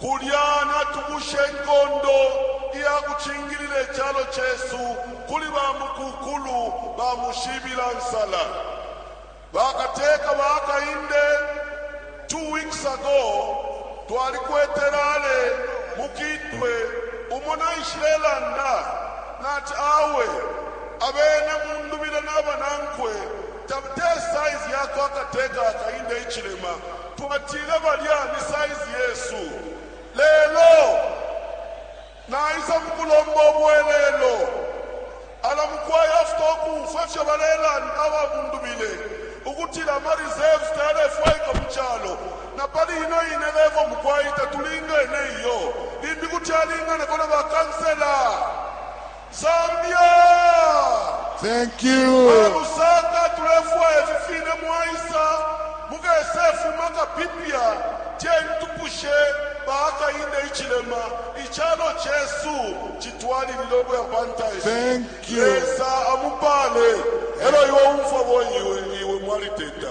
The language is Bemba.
Kulya natukusha inkondo iya kucingilila icalo cesu kuli bamukukulu ba mushibila nsala, bakateka ba kainde. Two weeks ago, twalikwete rale mu Kitwe umo naishilelanda nati, Awe, abene Mundubile na banankwe te size ya kwa kateka akainde icilema. Twatile balya ni size yesu. Lelo naisa mukulomba ubwelelo. Ala mukwai after ukumfwa ifyo balelanda ababundubile ukutila ama reserves tayalefwaikwa mu calo, na pali ino ine level mukwai tatulingene iyo, limbi kuti alinganako na ba councillor. Zambia! Thank you. Ba Lusaka tulefwaya ifi fine mwaisa mukesefuma kapipya tentupushe baakainde ichilema ichalo chesu chitwalilile ukuya pantaye Thank you. lesa amupale elo iwe umfwa boyiwe iwe mwaliteta